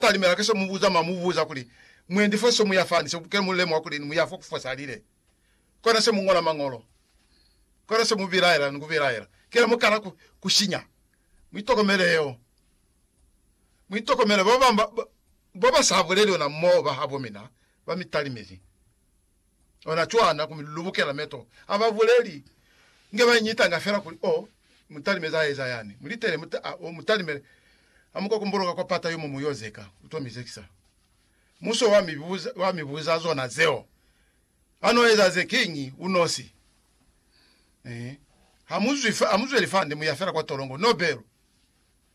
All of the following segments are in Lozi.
talimela ka se mu buza ma mu buza kuli, Mwendi fa se mu ya fani, se ke mu lemuha kuli ni mu ya fo ku fosalile. Kona se mu ngola Mañolo. Kona se mu bilaela ni ku bilaela. Kila mu kala ku, ku sinya. Mu itokomele yeo. Mu itokomele. Ba banga ba, ba ba sa buleli ona moo ba habo mina ba mi talimezi. ona cwana ku mi lulubukela meto a ba buleli nge ba nyitanga fela kuli, Oh, mutalimezi a eza yani. Mu litele muta, a, oh, mutalimele. A mu ka kumbuluka kwa pata yo mo mu yo zeka. U to mi zekisa. Muso wa mi buza, wa mi buza zona zeo. A no eza ze kiñi u nosi? Eh. Ha mu zwi, ha mu zweli fande, mu ya fela kwa tolongo. No belu.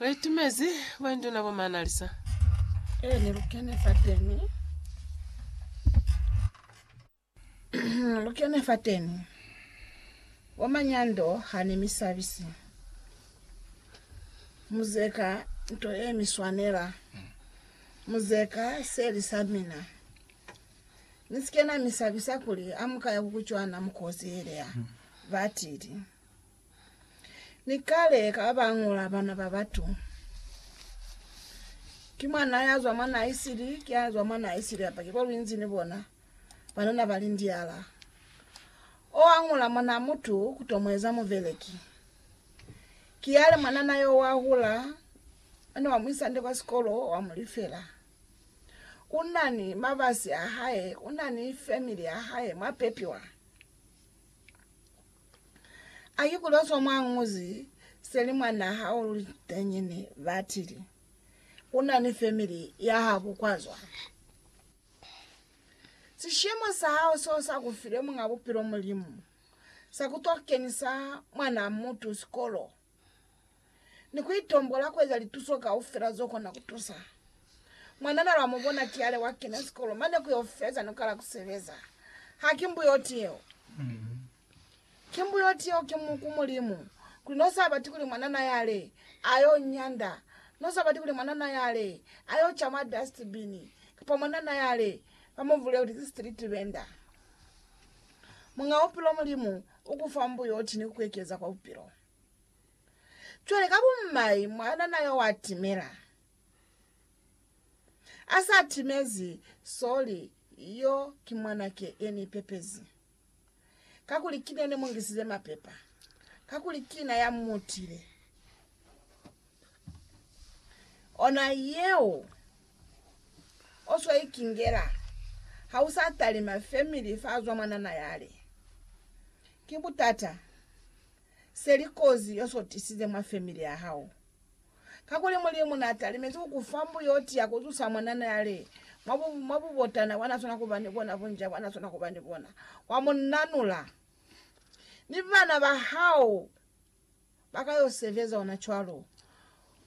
Re itumezi boinduna bo manalisa. Ee, ni lu kene fateni. lu kene fateni. Bo manyando ha ni mi sabisi. Muzeka nto ye mi swanela. Muzeka seli sa mina. Ni si ke na mi sabisa kuli amuka ya ku kucwana mu kozi yelea, ba tili. Ni kale ka ba ñola bana ba batu. Ki mwan'a ya zwa mwan'a isili, ki ya zwa mwan'a isili apa ki bo luinzi ni bona, banana ba lindiala. O a ñola mwan'a mutu ku to mu eza mubeleki. Ki yale mwanana yo wa hula, mane wa mu isa nde kwa sikolo, wa mu lifela. U na ni mabasi a hae, u na ni family ya hae mwa pepiwa. A ikulwezwa mwa nguzi seli mwa naha o liteñi ni batili. U na ni family ya habo kwa zwa. Sishemo sa hao seo sa ku file Muñ'a Bupilo Mulimu sa ku to kenisa mwanaa mutu sikolo. ni ku itombola ku eza lituso kaufela zo kona ku tusa. Mwanana lwa mu bona ki ale wa kena sikolo mane ku yo feza ni ku kala ku sebeza. Ha ki mbuyoti yeo. Ki mbuyoti yeo ki mu, ku Mulimu, kuli no sa bati kuli mwanana yale a yo nyanda, no sa bati kuli mwanana yale a yo ca mwa dustbini, kapa mwanana yale ba mu bulele kuti ki street venda. Muñ'a Bupilo Mulimu u ku fa mbuyoti ni ku ku ekeza kwa Bupilo. Cwale ka bumai mwanana yo wa timela. A sa timezi, sorry, yo ki mwanake ye ni pepezi. Kakuli ki ne ni mu ngisize mapepa. Kakuli ki na ya mu tile. Ona yeo oswa ikingela ha usa talima family fa zwa mwanana yale. Ki butata seli kozi yoso tisize mwa family ya hao. Kakuli Mulimu na talimezi ku kufa mbuyoti ya kuzusa mwanana yale mwa bu mwa bubotana bwana sona kuba ni bona bunja bwana sona kuba ni bona. Wa munanula ni bana ba hao. ba ka yo sebeza ona cwalo.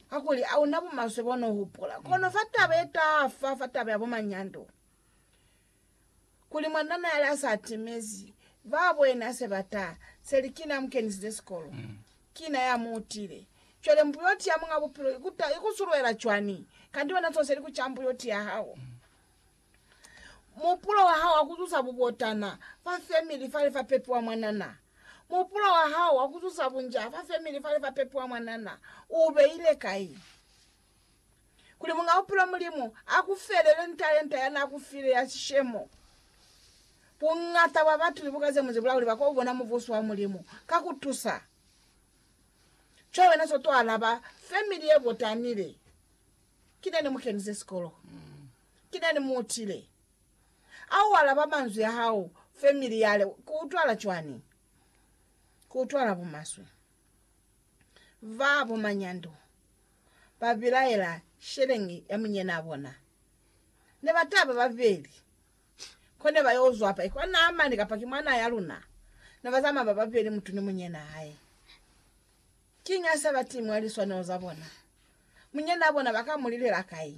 Kakuli a una bumaswe bo no hupula. Kono fa taba ye tafa, fa taba ya bo manyando, kuli mwanana yale a sa timezi, ba bwena se ba ta, se li, Kina mu kenisize sikolo. Kina ya mu utile. Cwale mbuyoti ya Muñ'a Bupilo i ku ta, i ku sulwela cwani? Kanti wena so se li ku ca mbuyoti ya hao. Mupulo wa hao wa ku zusa bubotana fa femili fale fa pepiwa mwanana. Mupulo wa hao wa ku zusa bunjaa fa femili fale fa pepiwa mwanana u beile kai? Kuli Muñ'a Bupilo Mulimu a ku felele ni talenta ya n'a ku file ya sishemo. Buñata bwa batu libuka ze mu zibula kuli ba k'o bona Mubuso wa Mulimu ka ku tusa co wena s'o t'o alaba femili ye botanile. Ki nani mu kenize sikolo. Ki nani mu utile. A u alaba manzwi a hao family yale ku utwala cwani? Ku utwala bumaswe. Ba bo manyando ba bilaela sheleñi ya munyenaa bona. Ne ba taba babeli. Ko ne ba yo zwa pa ikwa Naamani kapa ki mwanaa ya luna. Ne ba zamaya ba babeli mutu ni munyenaa hae. Kiñi ha sa ba timwa liswanelo za bona? Munyanaa bona ba ka mu lilela kai?